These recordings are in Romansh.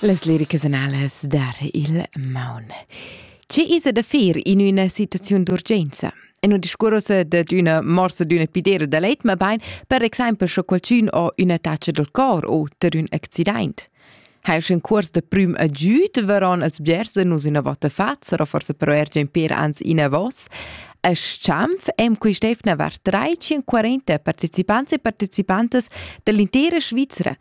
Las liricas analas dar il maun. Che isa da fer in üna situaziun d'urgenza? E non discurrosa de d'una morsa d'una pidera da leit, ma bein, per exempel, sche qualcun ho üna taccia del cor o ter ün accident. Ha er in curs de prim agiud varon als bgers de nus üna vota fats, era forse però er per ans in a vos. A Schanf èn quist'eivna var 340 partecipants e participantas dall'intera Svizra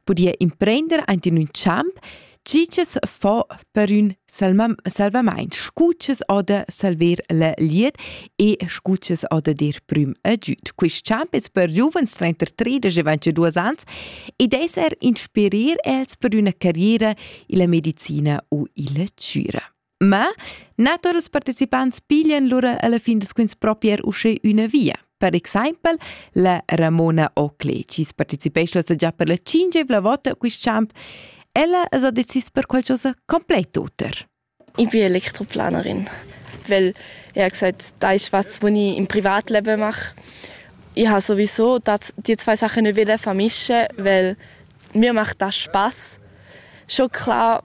pudia imprender aint in ün champ chi chi's fo per ün salvamaint, scu chi's ho da salver la glieud e scu chi's ho da dir prüm agüd. Quist champ es per giuvens trenta tredisch e ventadüas ans ed es er inspirer els per üna carriera illa medicina u illa chüra. Ma natur ils participants piglian lura alla fin da scuins propier usche üna via. Per exempel la Ramona Oakley, chi participescha già per la cingevla vota a quist champ, ella es ha decis per qualchosa complèt oter. Ich bin Elektroplanerin, weil ich habe gesagt, das ist was, was ich im Privatleben mache. Ich habe sowieso das, die zwei Sachen nicht vermischen weil mir macht das Spaß. Schon klar,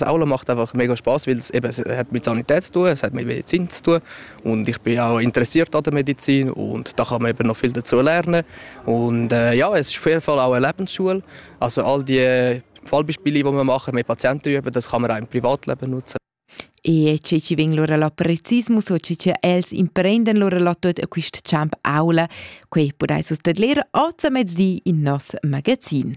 Aula macht einfach mega Spaß, weil es eben, es hat mit Sanität zu tun, es hat mit Medizin zu tun und ich bin auch interessiert an der Medizin und da kann man eben noch viel dazu lernen und äh, ja, es ist auf jeden Fall auch eine Lebensschule, also all die Fallbeispiele, die wir machen mit Patienten üben, das kann man auch im Privatleben nutzen. E ci ci veng lora la precismus o ci ci els imprenden lora la tuot a quist champ aula, quei podais us tadler oz a mezdi in nos magazin.